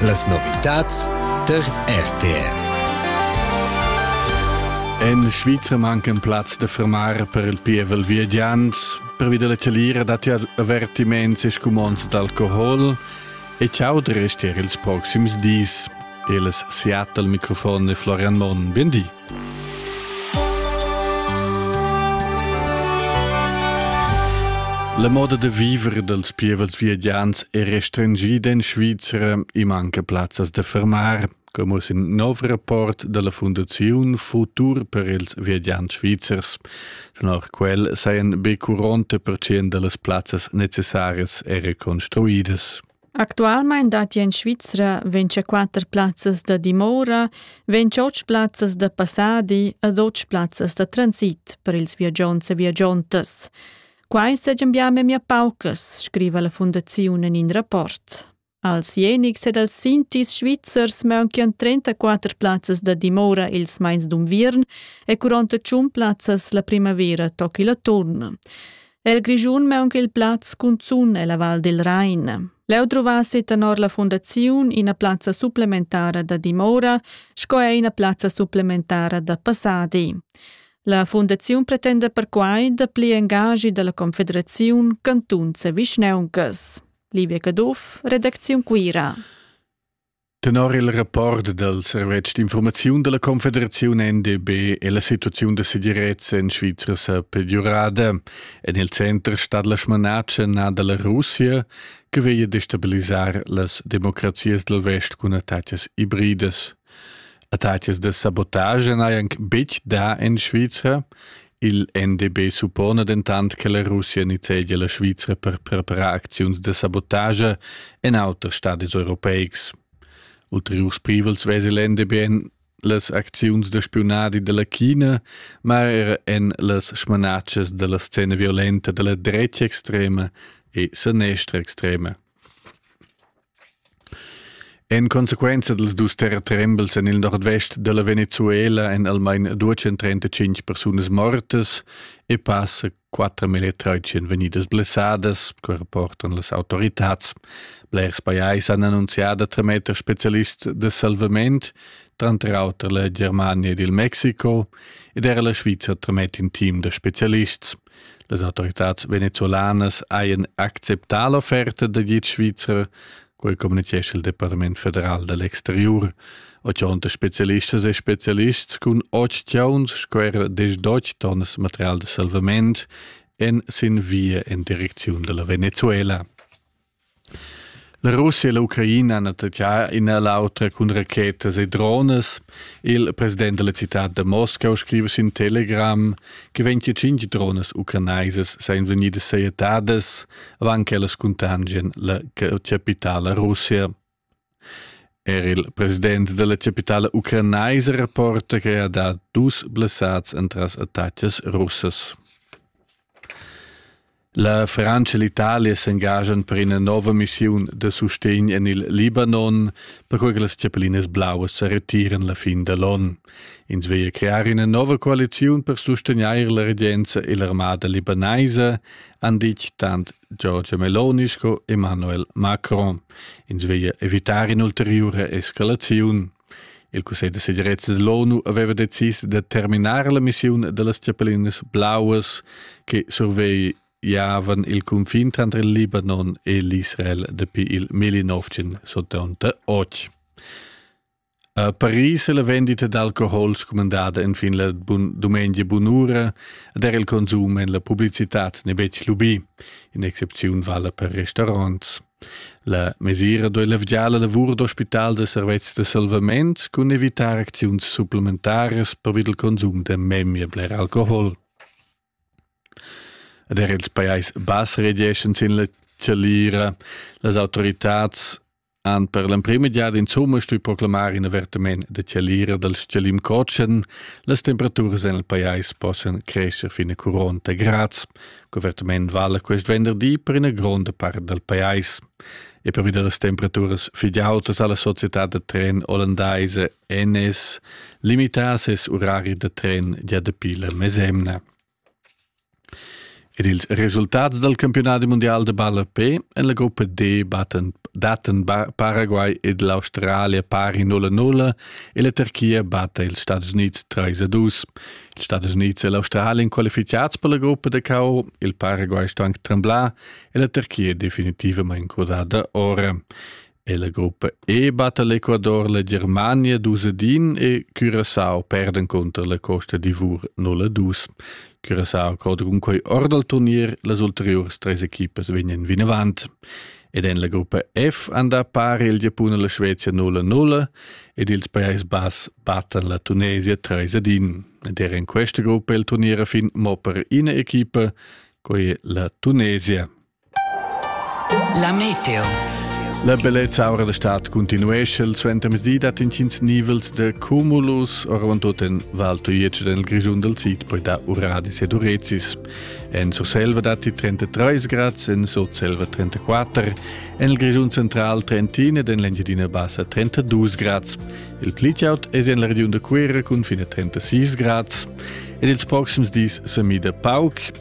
Las novitads der RTR. En Svizra mancan plaz da fermar per il pievel viagiant. Pervi della chalira datti avertiments e scumonds d'alcohol e ciao restier ils proxims dis. Eles Seattle, Mikrofon e Florian Monn. Buen di. La moda da viver dals pievels viadians è restringida en Svizra e manca plazzas da fermar, come uss in nov rapport dalla Fundaziun Futur per ils viadiants svizzers. Tenor quel sajan be 40% dallas plazzas necessarias era construidas. Actualmein datti en Svizra vinchaquatter plazzas da dimora, ventg plazzas da passadi ed otg plazzas da transit per ils viagiants e viagiantas. Quai segian bia memia paucas, scriva la fundaziun en in rapport. Als Jenics ed als Sintis svizzers maunchian 34 plazzas da dimora ils meins d'unviern e curont tschun plazzas la primavera toc il atturn. El Grischun maunch'il plaz cunzun ella Val del Rain. Leu druvassi tenor la fundaziun ina plazza supplementara da dimora sco er ina plazza supplementara da passadi. La fundaziun pretenda perquai dapli engagi dalla Confederaziun Cantun Vischneuncas. Livia Caduff, Redakziun Cuira. Tenor il rapport dal servetsch d'infurmaziun da la Confederaziun NDB è la situaziun da segirezza en Svizra sa peggiurada. En il center stat la smanatscha nà da la Russia che veglia destabilisar las democrazias dal vest cun attacas ibridas. Attacas da sabotage n'hajan betg dà en Svizra Il NDB suppona dentant che la Russia nizzegia la Svizra per preparar acziuns da sabotage en auters stadis europeics. Ulteriurs privels vesi l'NDB en las acziuns da spiunadi della China, ma er en las smanatschas della scena violenta della drecia extrema e sanestra extrema. En consequenza dals dus terratrembels en il nordvest da la Venezuela èn almain 235 persunas mortas e passa quatter militants ch'èn vegnidas blessadas, co rapportan las autoritads. Blers pajais han annunzià da trametter spezialists da salvament, tranter auter la Germania ed il Mexico, ed era la Svizra tramet in team da spezialists. Las autoritads venezolanas hajan acceptà l'offerta da git svizzer, quai communitgescha il Departament federal da l'exterior. Ochonta specialistas e specialists cun ocht chauns squera desdoch tonnas material de salvament en sin via en direcziun della Venezuela. La Russia e l'Ucraina han attaccà in a l'auter cun rachetas e dronas. Il president della città da Moscau scriva sin Telegram che 25 dronas ucrainaisas seien vegnidas sajettadas avant che ellas contagian la capitala Russia. Er il president da la chapitala ucranaisa rapporta che ha dà dus blessads entras attacas russas. La Frantscha e l'Italia s'engaschan per ina nova missiun da sustegn en il Libanon, perquai che las chapellinas blauas sa retiran la fin da l'onn. Ins veglia crear ina nova coaliziun per sustegnair la regenza e l'armada libanaisa, han ditg tant Giorgia Meloni sco Emmanuel Macron. Ins veglia evitar in'ulteriura escalaziun. Il Cussegl da segirezza dell'ONU aveva decis da terminar la missiun da las Cepellinas Blaues che survegliavan il cunfin tranter il Libanon e l'Israel dapi il 1978. A Paris è la vendita d'alcohol scumandada enfin la bun dumengia bunura ed er il consum en la publicitad n'è betg lubì. In'excepziun vala per restaurants. La mesira doi levgià la lavur d'ospital da servetschs da salvament cun evitar acziuns supplementaras per il consum da memia bler alcohol. Ed er ils pajais bass regeschan sin la chalira. Las autoritads han per l'emprima giada insumma stui proclamar in avertament da chalira dal stgalim cotschen, las temperaturas en il pajais possan crescer fin a 40 grads. L'avertament vala quest venderdi per ina gronda part dal pajais. E pervi da las temperaturas fidautas alla società da tren olandaise NS, limitas es urari da tren gia dapi la mesemna. Er ils resultats dal campiunadi mundial da ballape en la gruppa D battan, dattan Paraguay ed l'Australia pari 0-0 e la Turchia batta ils Stadis Unids 3-2. Ils Stadis Unids e l'Australien qualificads per la gruppa da KO, il Paraguay sto anche tremblar e la Turchia definitivament crudada ora. E la gruppa E batta l'Ecuador la Germania dus e din e Curaçao perden conter la Costa d'Ivor 0-2. Curaçao crod cun quei ord al turnier, las ulteriurs tres equipas vegnan vinavant. Ed en la gruppa F anda pari il Giapun e la Svezia 0-0 ed ils Pajais Bass battan la Tunesia 3-1. Ed er in questa gruppa il turnier a fin mo per ina equipa, quella la Tunesia. La meteo. La bellezza aura la stad continuesce il suentermezdi dat intgins nivels de cumulus orvantut en Val Tujetsch del Grischun del Sid, poi da Uradis ed Urezis. En Surselva datti 33 grads, en Sotselva 34, en il Grischun central 31 ed en l'Engiadina Bassa 32 grads. Il plitjaut è en la regiun da Cuera cun fine 36 grads. Ed ils proxims dis sa mida pauc.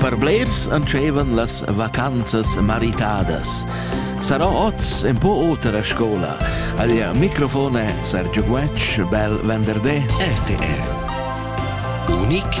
Per blers entscheivan las vacanzas maritadas. Sarà oz un po oter a scola. Aglia microfone Sergio Guetsch, bel venderdi, RTR. Unic